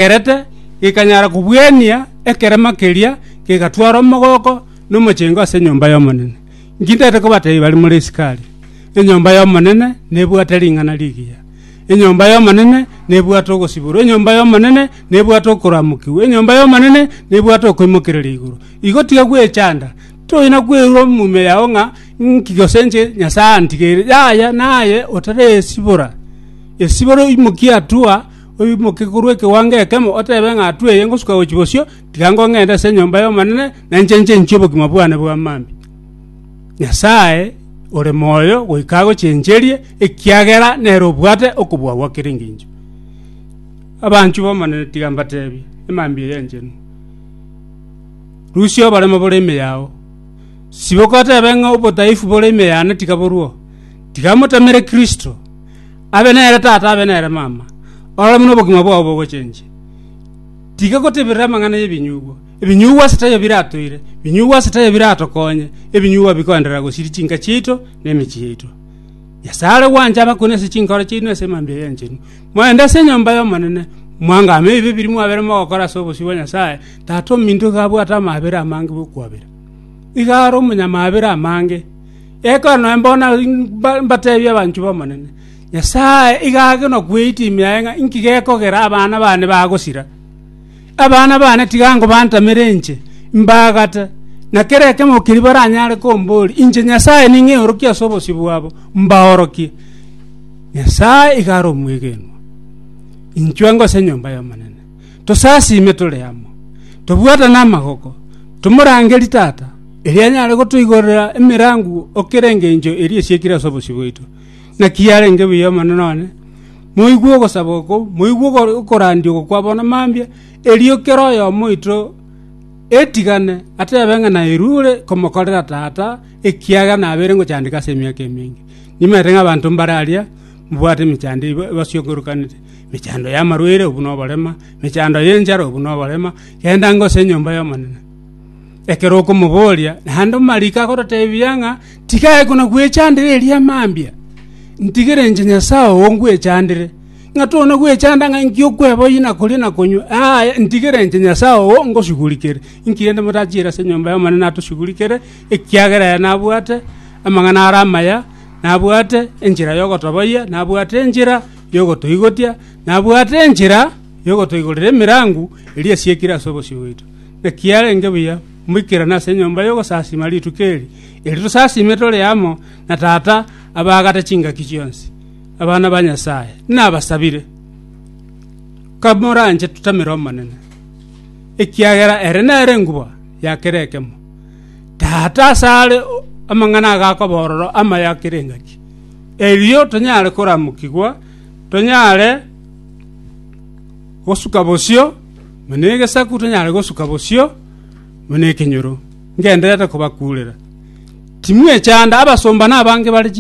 Egerete gekanyara kobuania ekerema keria, kegatwara omogoko na omochengo ase enyomba y'Omonene. Inki ndete kobateebia bare more Isikaria? Enyomba y'Omonene nebwate ring'ana rigiya. Enyomba y'Omonene nebwate ogosiborwa, enyomba y'Omonene nebwate okoramokigwa, enyomba y'Omonene nebwate okoimokereria igoro. Igo tiga gwechanda, toina kwerwa omumia yao ng'a inki gose inche Nyasae antigeire. Yaya naye otaresibora, esibore oimokie hatua, oimoke korwa ekewango ekemo, oteebe ng'a, 'Tweye ngosuka gochia bosio, tiga ngong'ende ase enyomba y'Omonene, na inche inche inchie obogima bwane bwa mambia. Nyasae ore moyo goika agochencherie, ekiagera nere obwate okobua gwa kera engencho. Abanchu b'Omonene tiga mbateebie, emambia eye enchenu. Rusia oboremo bore ime yao, siboka oteebe ng'a obodaifu bore ime yane tiga borue oo, tiga motamere Kristo, abe nere tata, abe nere mama, orore buna obogima bwao bogochenchia. Tiga goteberera amang'ana y'ebinyugwa. Ebinyugwa ase taiyo biratoire, ebinyugwa ase taiyo biratokonye, ebinyugwa bikoenderera gosiria chinka chiaito na emechie yaito. Nyasae are gwancha abakure ase chinkoro chiaino ase emambia eye enchenu. Moende ase enyomba y'Omonene, mwangame ebibe biria mwabere mogokora ase obosio bwa Nyasae, tata ominto iga abwate amaabera amange bw'okwabera. Iga are omonyamaabera amange, Ekero naye mbona mbateebie abanchwa b'Omonene, Nyasae iga ake nokweita ime yaye ng'a inki gekogera abana bane bagosira. Abana bane tiga nkobantamere inche, mbaagate, na kera ekemo keria baranyare komboria, inche Nyasae ning'eorokie ase obosio bwabo, mbaorokie. Nyasae iga are omwegenwa, inchwe ngose enyomba y'Omonene. tosasiime tore amo, tobwatane amagoko, tomorangerie Tata, erio anyare gotoigorera emerango o kera engencho eria esiekire ase obosio bwaito. Naki yarenge buya Omonene one, moigwe ogosaba okwo, moigwe ogo- okorandia oko kwa bono mambia, erio kera oyomo oito etigane atebe ng'a nairwe ore komokorera Tata, ekiagera nabeire ngochandeka ase emiaka emenge. Nimanyete ng'a abanto mbare aria mbwate emechando eba- ebasiokorokanete. Mechando y'amarwaire, obwo noborema, mechando y'enchara, obwo noborema, genda ngose enyomba y'Omonene. Ekero okomoboria, naende omariko agototebia ng'a tigae kona gwechandera eria mambia, ntigere inche Nyasae oo ngwechandere, ng'a tona gwechanda ng'a inki okweba oyio na koria na konywa, aaya, ntigere inche Nyasae oo ngosigurikere. Inki rende motachiire ase enyomba y'Omonene natosigurikere, ekiagera aya nabwate amang'ana are amaya, nabwate enchera y'ogotoboyia, nabwate enchera y'ogotoigotia, nabwate enchera y'ogotoigorera emerango eria esiekire ase obosio bwaito. Naki arenge buya moikerane ase enyomba y'ogosasiima rituko eri, eri tosasiime tore amo na Tata abaagate chingaki chionsi, abana ba Nyasae. Nabasabire, kamoranche totamere Omonene, ekiagera ere nere nguba ya kera ekemo. Tata asare amang'ana agakwa bororo amaya kera engaki. erio tonyare koramukigwa, tonyare gosuka bosio buna egesaku, tonyare gosuka bosio buna ekenyoro, ngendererete kobakuurera. Timwechanda, abasomba nabange bare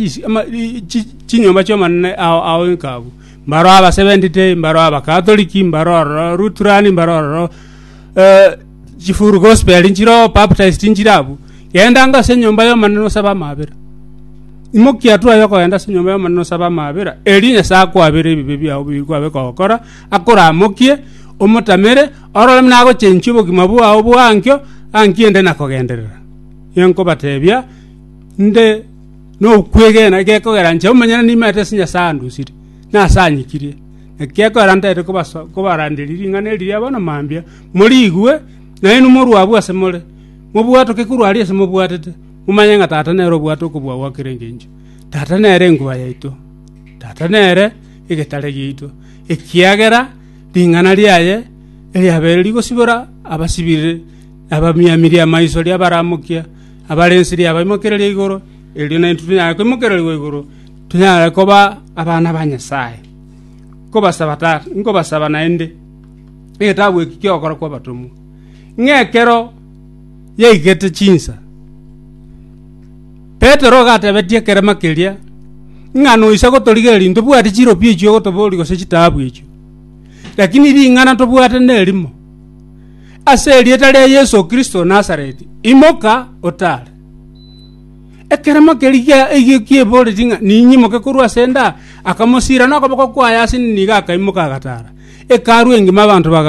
chinyomba chi'Omonene ao inko abwo, mbaro Abaseventh Day, mbaro Abakatoliki, mbaro ororo Lutheran, mbaro ororo Chifull gospel nchiroo baptized nchire abwo. Gendanga ase enyomba y'Omonene osabe amabera. Imokia twaye okogenda ase enyomba y'Omonene osabe amabera, erio Nyasae akwabere ebibe biao bigikwabe kogokora, akoramokie, omotamere, orore buna agochenchia obogima bwao bwa ankio anki ende na kogenderera. Enkobatebia, inde nokwegena gekogera nche omonyene nimaete ase Nyasae andusire, nase anyikirie. Naki gekogera ntaete kobaso- kobaranderia ring'ana eri ria bono mambia, Moriigwe, naende inwe morue abwo ase more, mobwatoke korwa aria ase mobwatete, momanye ng'a Tata nere obwate okobua gwa kera engencho. Tata nere enkuba yaito. Tata nere egetare giaito, ekiagera ring'ana riaye eriabere rigosibora abasibire, na abamiamirie amaiso riabaramokia, abarensirie abaimokereria igoro, erio naintwe tonyare koimokererigwa igoro, tonyare koba abana ba Nyasae. Nkobasaba Tata, nkobasaba naende. Egetabu eki ki'Ogokora kw'Abatomwa, ng'a ekero yaigete chinsa, Petero ogatebetia ekerema keria ng'a noisa gotorigereria ntobwati chiropi echio ogotoboria gose chitaabu echio, lakini ring'ana ntobwate nerimo, Ase erieta ria Yeso Kristo o Nazareti, imoka, otare. Ekeremo keria gi'eboreti ng'a ninyimoke korwa ase enda, akamosiira nokoboko kwaye ase nigo akaimoka agataara. Ekearu engima abanto bagakwa.